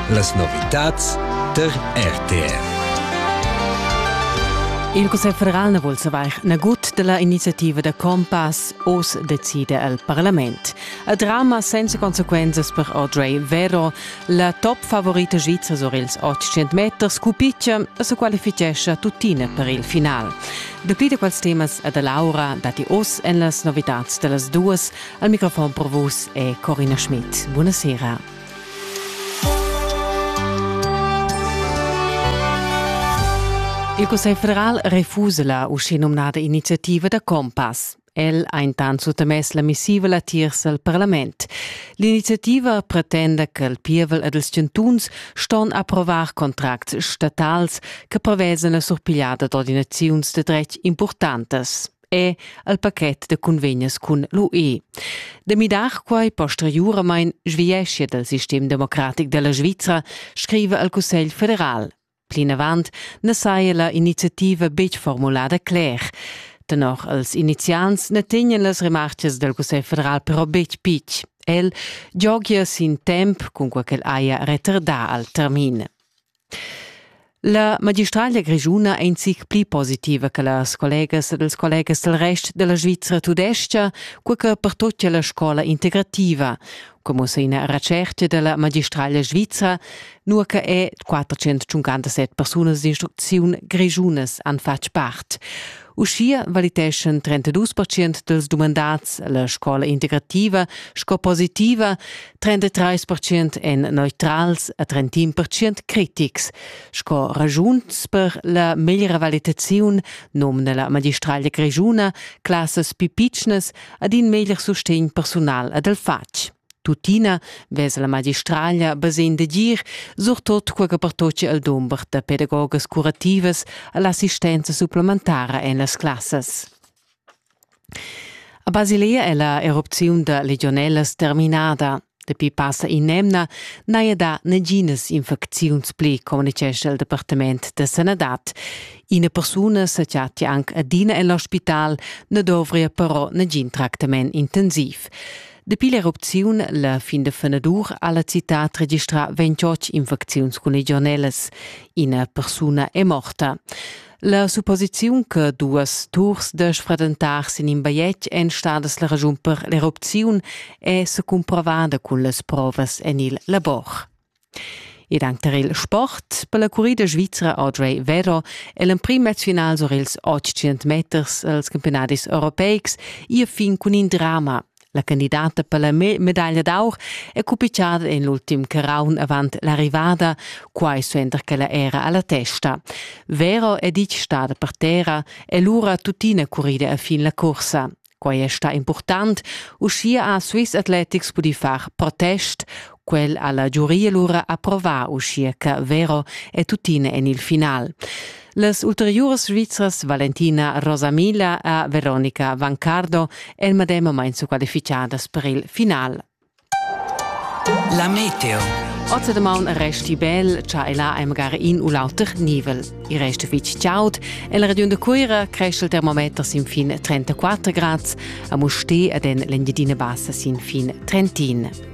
Las novitads der RTR. Il Cussegl federal na vul savair nagut della iniziativa da Compass oz decide al Parlament. A drama senza conseguenzas per Audrey Vero, la top favorita svizra sur ils 800 meter, scupiccia e se qualifichescha tuttina per il final. Dapli da quels temas a da Laura dati oz en las novitads dellas duas Al microfon per vus è Corina Schmidt. Buona sera. Il Cussegl federal refusa la uschinumnada iniziativa da Compass. El ha intant suttamess la missiva latiers al parlament. L'iniziativa pretenda che il pievel ed ils chantuns ston approvar contracts statals che prevesan la surpigliada d'ordinaziuns de dretg importantas. è al paket da convegnas cun l'UE. Da midar quai posteriuramain sviescia dal sistem democratic da la Svizra, scriva al Cussegl federal. Plinavant na saja la iniziativa betg formulada cler. Tenor els iniziants na tegnan las remartgas dal Cussegl federal però betg pitg. El giogia sin temp, cun quai ch'el haja retardà al termin. La magistraglia grischuna è in zic pli positiva che las collegas ed ils collegas dal rest da la Svizra tudestga, cur che pertutgia la scola integrativa, come sa ina retschertga da la magistraglia svizra, nur che è 457 persunas d'instrucziun grischunas han fatg part. Uschia valiteschan 32% dels dumandats la scola integrativa sco positiva, 33 percent èn neutrals e 31 percent critics. Sco ragiuns per la meglra valitaziun nomna la magistraglia grischuna classas più pitschnas ad in meglier sustegn personal ed al fatg. Tuttina vesa la magistraglia basegn de gir, surtot quaga pertoce al dumber da pedagogas curativas e l'assistenza supplementara en las classas. A Basilea è la erupziun da legionellas terminada. Dapi passa in'emna n'haja dà naginas infecziuns pli, communitgescha il Departament da sanadad. Ina persuna sa chattia anc adina en l'ospital, na dovria però nagin tractament intensiv. Dapi l'erupziun la fin da fenadur ha la citad registrà 28 infecziuns cun legionellas. Ina persuna è morta. La supposiziun che duas turs da sfradentar sin in bajetg èn stadas la raschun per l'erupziun è secumprovada cun las provas en il labor. Ed anc tar il sport per la currida svizra Audrey Vero è l'emprim mezfinal sur ils 800 meters als campiunadis europeics ia fin cun in drama La candidata per la medaglia d'aur è cupitgada en l'ultim caraun avant l'arrivada, quai suenter ch'ella era a la testa. Vero è ditg stada per terra e lura tuttina currida a fin la cursa. Quai è stà important. Uschia ha Swiss Athletics pudì far protest, Quel ha la giuria lura approvà uschia che Vero è tuttina en il final. Las ulteriuras svizras Valentina Rosamila e Veronica Vancardo èn medem moment squalificadas per il final. La meteo. Ozza damaun resti bel, cha e là am gar in u l'auter nivel. I resta fitg chaud. En la regiun de Cuira cresce il termometer sin fin 34 grads, a Musti ed en l'Engiadina Bassa sin fin 31.